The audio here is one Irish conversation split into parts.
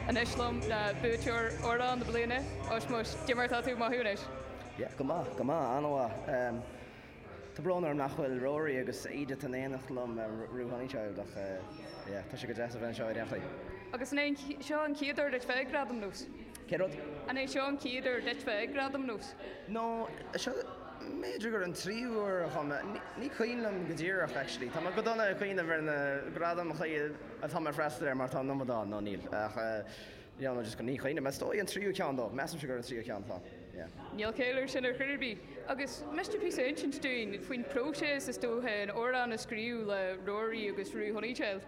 Anois liom le buaiteoir Amhrán na bliana, Oisín Mo, cad é mar atá tú? Maith thú anois. Yeah, go maith, go maith, an-mhaith. Ehm, tá brón orm nach bhfuil Rory agus Edith in éineacht liom Róg, Roo Honeychild ach eh, yeah, tá sé go deas a bheith anseo i ndáiríre. Agus an é seo an chéad uair duit bheith ag Gradaim Nós? Cén rud? An é seo an chéad uair duit bheith ag Gradaim Nós? No, seo, b'fhéidir gur an tríú uair dhom. Ní cuimhin liom go díreach, actually. Tá mé go dona ag cuimhneamh ar na gradaim a tá mé ag freastal air mar tá an iomad ann, nó níl. Ach, yeah, no, just go, ní chuimhnim. Is dóigh an tríú ceann dó. Measaimse gur an tríú ceann atá, yeah. Níl caill ar sin ar chor ar bith. Agus ar mhiste píosa a insint dúinn faoin próiseas, is dócha, an amhrán a scríobh le Rory agus Roo Honeychild.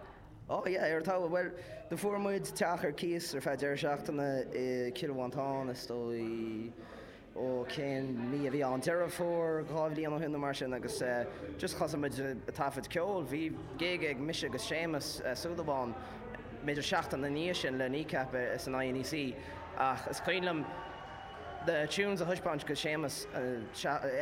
Oh yeah, ar dtús. Bhuel, do fuair muid teach ar cíos ar feadh deireadh seachtaine i Cill Mhantáin, is dóigh, ó cén mí a bhí ann, Deireadh Fómhair, dhá bhliain ó shin nó mar sin agus eh just thosaigh muid a' taifead ceoil, bhí gig ag mise agus Séamus Ó Súilleabháin b'fhéidir seachtain ina ndiaidh sin le Kneecap eh san INEC ach is cuimhin liom, na tunes a thaispeáint go Séamus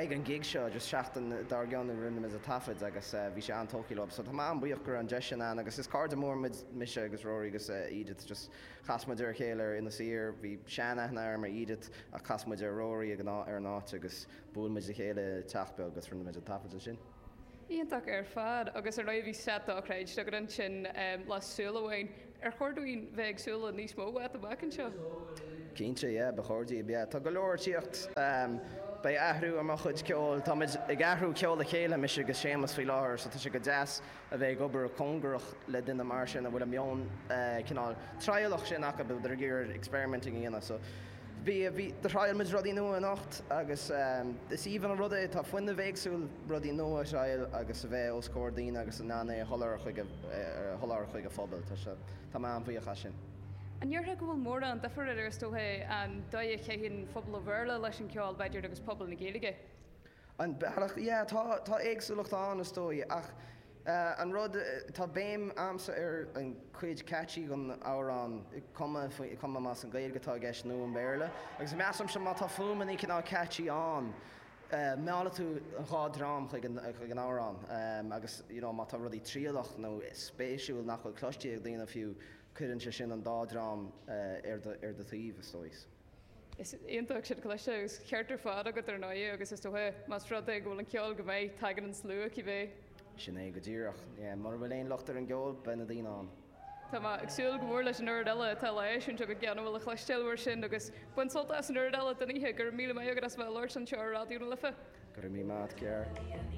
ag an gig seo agus seachtain dár gcionn a rinne muid a taifead agus bhí sé an-tógtha leo. So tá mé an-bhuíoch go raibh an deis sin ann agus is cairde móra muid, mise agus Rory agus Edith just chas muid ar a chéile ar Inis Oírr, bhí sean-aithne orm ar Edith ach chas muid ar Rory ar an áit agus bhuail muid le chéile i teach beag agus rinne muid an taifead ansin. Iontach ar fad, agus ar ndóigh bhí set dochreidte agat ansin le Súil Amháin. Ar chóir dúinn bheith ag súil le níos mó uait amach anseo? Cinnte, yeah, ba chóir daoibh, yeah. Tá go leor ag tíocht. Beidh athrú ar mo chuid ceoil. Táimid ag cruthú ceol le chéile, mise agus Séamas, faoi láthair, so tá sé go deas a bheith ag obair cóngarach le duine mar sin a bhfuil an meon cineál trialach sin acu, a bheith ag iarraidh experimenting a dhéanamh. Bhí, bhí, do thriail muid rudaí nua anocht agus is aoibhinn an rud é, tá fuinneamh éagsúil, rudaí nua a thriail agus a bheith os comhair daoine agus in ann é a sholáthar chuig a, a sholáthar chuig a phobail. Tá sé, tá mé an-bhuíoch as sin. An ndéarfá go bhfuil mórán difir idir, is dócha, an dóigh a chaitheann pobal an Bhéarla leis an gceol, b'fhéidir, agus pobal na Gaeilge? An bealach, yeah, tá, tá éagsúlacht ann, is dóigh, ach. An rud, tá béim a'msa ar an cuid catchy den amhrán, cuma más í an Gaeilge atá i gceist nó an Béarla. Agus measaimse má tá fuaimeannaí cineál catchy ann, meallfaidh tú an dhá dream chuig an amhrán. Agus you know má tá rudaí trialach nó spéisiúil nach bhfuil cloiste ag daoine fiú, cuireann sé sin an dá dream ar do taobh, is dóigh. Is iontach sin cliste agus ceart ar fad agat ar ndóigh agus is dócha más rud é go bhfuil an ceol go maith tagann an slua cibé. Sin é go díreach. Yeah, mura bhfuil aon locht ar an gceol beidh na daoine ann. Tá mé ag súil go mór leis an oiread eile atá le eisiúint agat agus a bhfuil le chloisteáil uait ansin agus bain sult as an chuid eile den oíche. Go raibh míle maith agat as a bheith ag labhairt anseo ar Raidió na Life. Go raibh míle maith agat, Ger.